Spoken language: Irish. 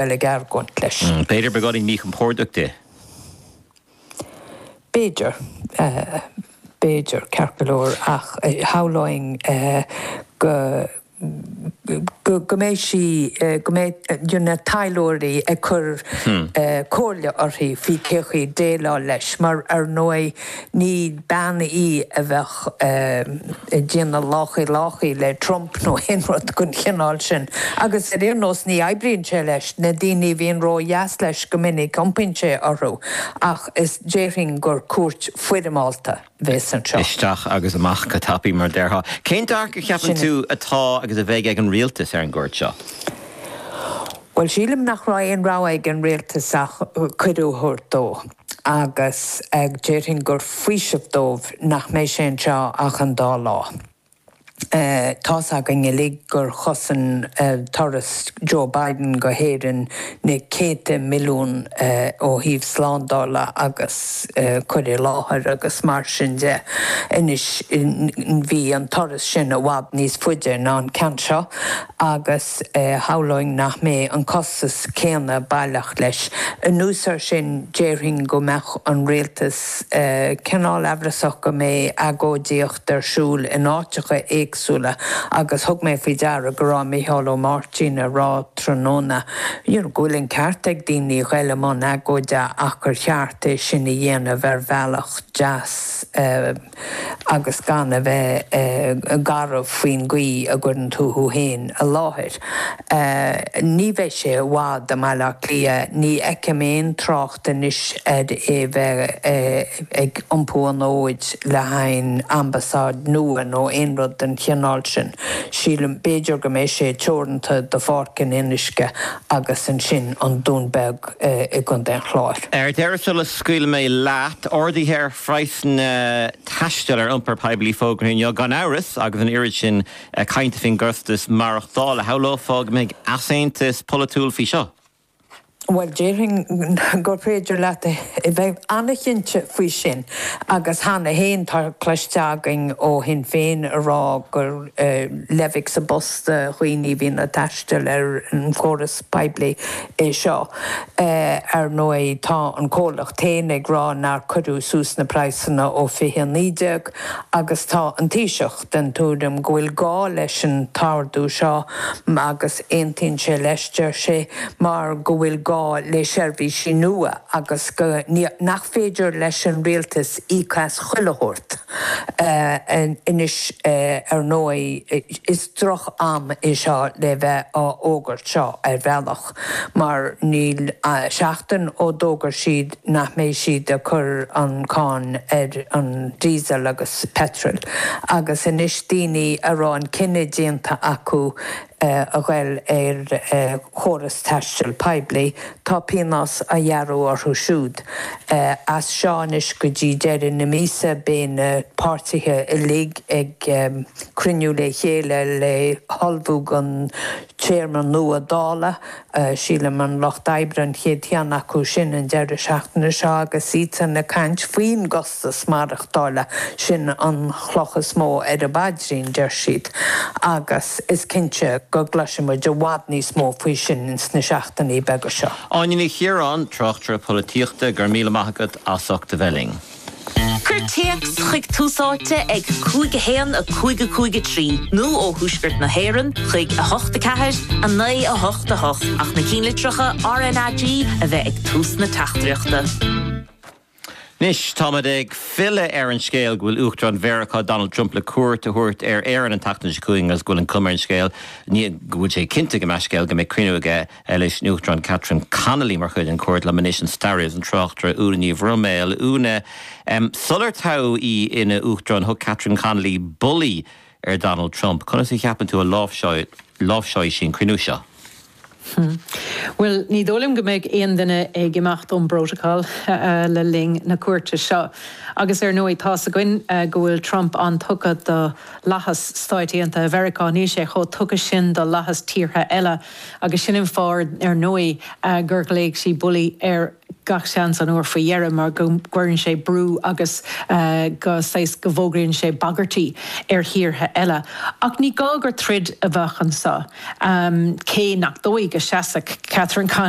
dul ag argóint leis. B'fhéidir beagáinín míchompordach di. B'fhéidir. B'fhéidir, ceart go leor, ach shamhlóinn go, go mbeidh sí, go mbeidh na taidhleoirí ag cur comhairle uirthi faoi cén chaoi déileáil leis mar, ar ndóigh, Ní bean í a bheadh ag déanamh láchaí láchaí le Trump nó aon rud den chineál sin. Agus ar aon nós ní oibríonn sé leis. Na daoine a bhíonn ródheas leis go minic iompaíonn sé orthu. Agus déarfainn gur cuairt foirmeálta a bheas anseo. Isteach agus amach go tapaidh mar a déarfá. Cén dearcadh a cheapann tú atá agus a bheidh ag an rialtas ar an gcuairt seo? Bhuel sílim nach raibh aon rogha ag an rialtas ach cuireadh a thabhairt dó. agus déarfainn gur faoiseamh dóibh nach mbeidh sé anseo ach an dá lá. Tá's againn uilig gur chosain turas Joe Biden go hÉirinn na céadta milliún ó thaobh slándála agus cur i láthair agus mar sin de. Anois bhí an turas sin i bhfad níos faide ná an ceann seo agus. Shamhlóinn nach mbeidh an costas céanna baileach leis. Anuas air sin, déarfainn go mbeadh an rialtas cineál amhrasach go mbeidh agóidíocht ar siúl in áiteacha éagsúla agus thug mé faoi deara go raibh Micheál Martin ag rá tráthnóna go bhfuil an ceart ag daoine a ghoil i mbun agóide ach gur cheart é sin a dhéanamh ar bhealach deas. agus gan a bheith garbh faoin gcaoi a gcuireann tú thú fhéin i láthair. Ní bheidh sé i bhfad i mBaile Átha Cliath, ní fheicim aon trácht anois ar é bheith ag iompú an fhóid le haghaidh ambasáid nua nó aon rud den chineál sin. Sílim, b'fhéidir go mbeidh sé teoranta do Pháirc an Fhionnuisce agus ansin an Dún Beag i gContae an Chláir. Ar deireadh sula scaoilfidh mé leat, ardú ar phraghsanna taistil ar iompar poiblí fógartha inniu. Gan amhras, agus an oiread sin cainte faoin gcostas maireachtála, shamhlófá go mbeidh easaontas polaitiúil faoi seo. Bhuel, déarfainn gur féidir leat a bheith an-chinnte faoi sin agus cheana féin tá cloiste againn ó Shinn Féin ag rá gur leidhb sa bpus do dhaoine a bhíonn ag taisteal ar an chóras poiblí é seo. Ar ndóigh tá an comhlacht féin ag rá nár cuireadh suas na praghsanna ó 2019 agus tá an Taoiseach den tuairim go bhfuil gá leis an t-ardú seo agus aontaíonn sé leis, deir sé, mar go bhfuil gá le seirbhísí nua agus nach féidir leis an Rialtas íoc as chuile shórt anois. Ar ndóigh. droch am é seo le bheith á fhógairt seo ar bhealach mar níl seachtain ó d'fhógair siad nach mbeidh siad ag cur an cáin ar an diesel agus petrol agus anois daoine a raibh an cinneadh déanta acu a ghoil ar chóras taistil poiblí tá pionós á ghearradh orthu siúd as seo anois go dtí deireadh na míosa beidh na páirtithe uilig ag cruinniú le chéile le hullmhú don téarma nua Dála. Sílim an Lucht Oibre an chéad cheann acu sin an deireadh seachtaine seo agus iadsan ag caint faoin gcostas maireachtála, sin an chloch is mó ar a bpaidrín, deir siad, agus is cinnte go gcloisfidh muid i bhfad níos mó faoi sin sna seachtainí beaga seo. Áine Ní Chiaráin, Tráchtaire Polaitíochta, go raibh míle maith agat as ucht a bheith linn. Cuir téacs chuig Tús Áite ag 5 1 5 5 3 nó ó Thuaisceart na hÉireann chuig 8 4 9 8 8 ach na cinnlitreacha RNAG a bheith ag tús na teachtaireachta. Anois táimid ag filleadh ar an scéal go bhfuil Uachtarán Mheiriceá Donald Trump le cuairt a thabhairt ar Éirinn an tseachtain seo chugainn agus go bhfuil an chuma ar an scéal, nó go bhfuil sé cinnte go mbeidh scéal, go mbeidh cruinniú aige. leis an Uachtarán Catherine Connolly mar chuid den chuairt liom anois an staraí agus an tráchtaire Úna Ní Bhroiméil Úna, sular toghadh í ina Uachtarán thug Catherine Connolly 'bully' ar Donald Trump. Conas a cheapann tú a láimhseáidh sí an cruinniú seo? Bhuel ní dóigh liom go mbeidh aon duine ag imeacht ón bprotocol le linn na cuairte seo. Agus ar ndóigh tá's againn go bhfuil Trump an-tugtha do fhlaitheas Stáit Aontaithe Mheiriceá. Níl sé chomh tugtha sin do fhlaitheas tíortha eile. Agus sin an fáth, ar ndóigh, gur ghlaoigh sí 'bully' air gach seans an uair faoi dheireadh mar go gcuireann sé brú agus go, saghas, go bhfógraíonn sé bagairtí ar thíortha eile. Ach ní gá gur troid a bheadh anseo, cé nach dóigh go seasfadh Catherine Connolly,